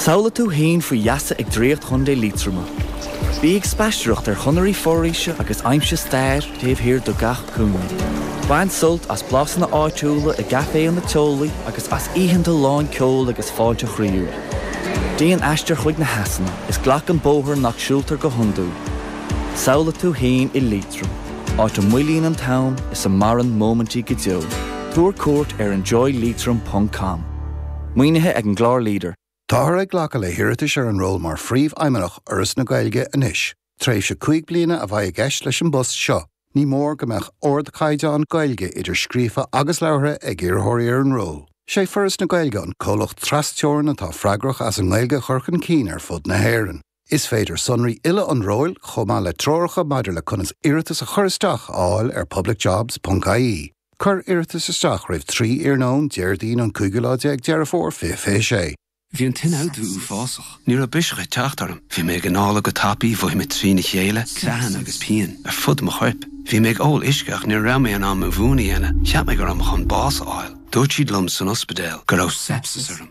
Samhlaigh tú fhéin faoi gheasa ag draíocht Chontae Liatroma. Bí ag spaistearacht ar chonairí foraoise agus aimsigh stair taobh thiar de gach cúinne. Bain sult as blasanna áitiúla i gcaiféanna teolaí agus as oícheanta lán ceoil agus fáilte chroíúil. Déan aistear chuig na heasanna is glac an bóthar nach siúltar go hiondúil. Samhlaigh tú fhéin i Liatroim, áit a moillíonn an t-am is a maireann móimintí go deo. Tabhair cuairt ar enjoyleitrim.com. Maoinithe ag an gclár leader. Táthar ag glacadh le hiarratais ar an ról mar Phríomhfheidhmeannach Fhoras na Gaeilge anois. Tréimhse cúig bliana a bheidh i gceist leis an bpost seo. Ní mór go mbeadh ardchaighdeán Gaeilge, idir scríofa agus labhartha, ag iarrthóirí ar an ról. Is é Foras na Gaeilge an comhlacht tras-Teorann atá freagrach as an nGaeilge a chur chun cinn ar fud na hÉireann. Is féidir sonraí uile an róil, chomh maith le treoracha maidir le conas iarratas a chur isteach, a fháil ar publicjobs.ie. Cuir iarratas isteach roimh 3 iarnóin Déardaoin an cúigiú lá déag Deireadh Fómhair 2026. Bhí an t-ionfhabhtú uafásach. Ní raibh biseach ag teacht orm. Bhí mé ag análadh go tapaidh, mhothaigh mé trína chéile, creathanna agus pian ar fud mo choirp. Bhí mé ag ól uisce ach ní raibh mé in ann mo mhún a dhéanamh. Cheap mé go raibh mé chun bás a fháil. Dúirt siad liom san ospidéal go raibh sepsis orm.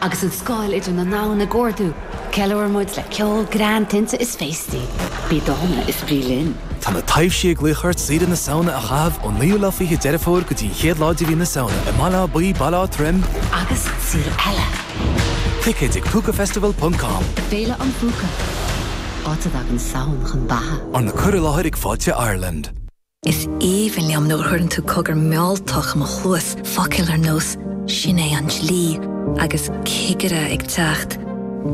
Agus an scáil idir na ndomhan ag ardú, ceiliúraimid le ceol, greann, tinte is féastaí. Bí dána is bí linn. Tá na taibhsí ag glaoch ort saoire na Samhna a chaitheamh ón naoú lá fiche Deireadh Fómhair go dtí an chéad lá de mhí na Samhna i mBaile Átha Buí, Baile Átha Troim, agus araile. Ticéid ag Púcafestival ponc com. Féile Púca, áit a dtagann Samhain chun beatha. Arna cur i láthair ag Fáilte Ireland. Is aoibhinn liom nuair a chuireann tú cogar mealltach i mo chluas, focail ar nós 'Sin é an dlí' agus 'Cigire ag teacht',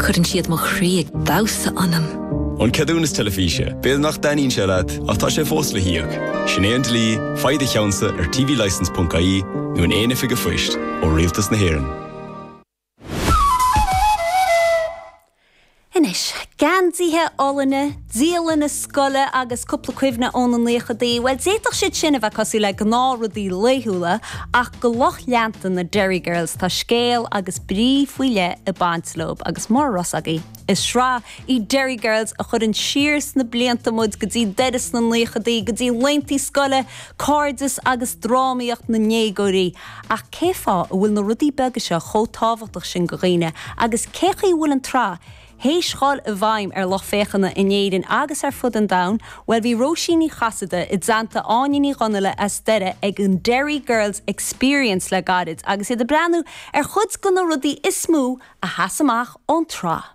cuireann siad mo chroí ag damhsa ionam. An ceadúnas teilifíse, b'fhéidir nach dtaitníonn sé leat ach tá sé fós le híoc. Sin é an dlí, faigh do cheannsa ar tvlicence.ie nó in aon oifig an phoist ó Rialtas na hÉireann. Anois, geansaithe olainne, dialanna scoile agus cúpla cuimhne óna naochadaí, bhuel, d'fhéadfadh siad sin a bheith cosúil le gnáthrudaí laethúla, ach do lucht leanta na Derry Girls tá scéal agus brí faoi leith ag baint leob agus mura raibh fhios agaibh, is sraith í Derry Girls a chuireann siar sna blianta muid go dtí Doire sna naochadaí, go dtí laethanta scoile, cairdeas agus drámaíocht na ndéagóirí. Ach cé fáth a bhfuil na rudaí beaga seo chomh tábhachtach sin do dhaoine agus cé chaoi a bhfuil an tsraith théis dul i bhfeidhm ar lucht féachana in Éirinn agus ar fud an domhain? Bhuel bhí Róisín Ní Chasaide i dteannta Áine Ní Dhonghaile as Doire ag an Derry Girls Experience le gairid agus iad ag breathnú ar chuid de na rudaí is mó a sheas amach ón tsraith.